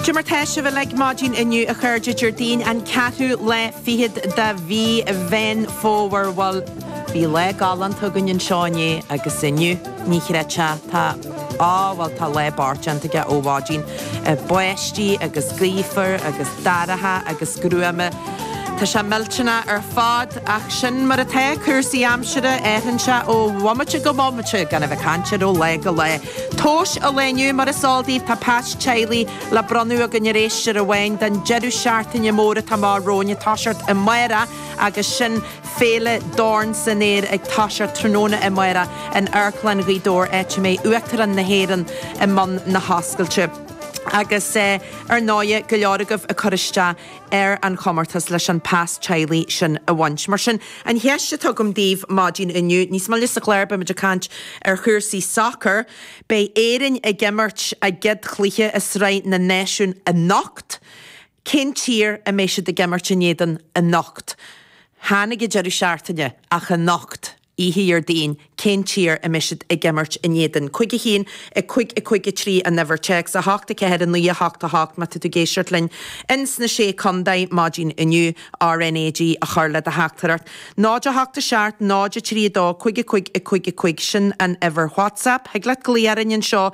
Cad é mar tá sibh uilig maidin inniu, a chairde, Déardaoin an ceathrú lá fichead de mhí Mheán Fómhair. Bhuel, bhí lá galánta againn anseo inné agus inniu, ní chreidfeá, tá, á, bhuel, tá lá beart déanta aige ó mhaidin. Báistí agus gaofar agus dorcha agus gruama. Tá sé millteanach ar fad, ach sin mar atá cúrsaí aimsire, athraíonn sé ó bhomaite go bomaite, gan a bheith ag caint air ó lá go lá. Tomhais an lae inniu, mar is eol daoibh, tá pas teaghlaigh le bronnadh againn ar éisteoir amháin don deireadh seachtaine mór atá amach romhainn, toiseacht amáireach, agus sin Féile Dorn san Aer ag toiseacht tráthnóna amáireach in Amharclann Ghaoth Dobhair áit a mbeidh Uachtarán na hÉireann i mbun na hoscailte. Agus ar ndóighe, go leor agaibh ag cur isteach. ar an chomórtas leis an pas teaghlaigh sin a bhaint. Mar sin, an cheist atá agam daoibh maidin inniu, níos moille sa chlár beimid ag caint ar chúrsaí sacair, beidh Éirinn ag imirt a gcéad chluiche i Sraith na Náisiún anocht, cén tír a mbeidh siad ag imirt in éadan anocht? Chan ag an deireadh seachtaine, ach anocht? oíche Dhéardaoin, cén tír a mbeidh siad ag imirt in éadan? Cúig a haon, a cúig, a cúig a trí an uimhir téacs, a hocht a ceathair, a naoi a hocht a hocht má tá tú ag éisteacht linn in sna Sé Condae maidin inniu, RnaG a chur le do theachtaireacht. 0 8 7 0 3 2 5 5 5 5 sin an uimhir WhatsApp. Thig leat glaoch orainn anseo.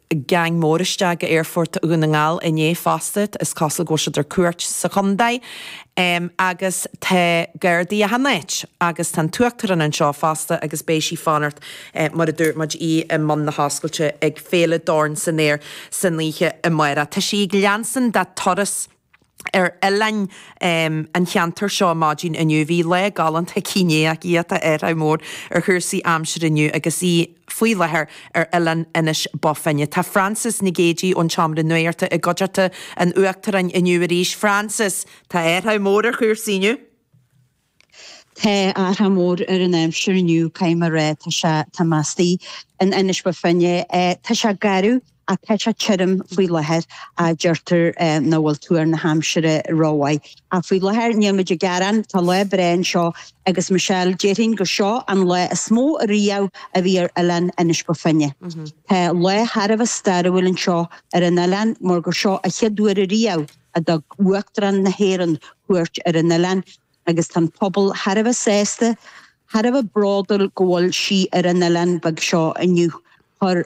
geaing mór isteach go Aerfort Dhún na nGall inné fosta, is cosúil go bhfuil siad ar cuairt sa chontae agus tá gardaí achan áit agus tá an tUachtarán anseo fosta agus beidh sí ag fanacht mar a dúirt muid, í i mbun na hoscailte ag Féile Dorn san Aer san oíche amáireach. Tá sí ag leanstan dá turas. ar oileáin an cheantair seo maidin inniu. Bhí lá galánta aici inné ach tá athrach mór ar chúrsaí aimsire inniu agus í faoi láthair ar oileán Inis Bó Finne. Tá Frances Nic Géadaigh ón tSeomra Nuachta i gcuideachta an Uachtaráin inniu arís. Frances, tá athrach mór ar chúrsaí inniu! Tá athrach mór ar an aimsir inniu, caithfidh mé a rá, tá sé, tá muid istigh in Inis Bó Finne, tá sé garbh ach tá sé tirim faoi láthair ach deirtear nach bhfuil tuar na haimsire rómhaith ach faoi láthair níl muid ag gearán, tá lá breá anseo agus Michelle, déarfainn gur seo an lá is mó ariamh a bhí ar oileán Inis Bó Finne. Tá lá thar a bheith stairiúil anseo ar an oileán mar gur seo a chéad uair ariamh, a dtug Uachtarán na hÉireann cuairt ar an oileán agus tá an pobal thar a bheith sásta, thar a bheith bródúil go bhfuil sí ar an oileán beag seo inniu. Chuir.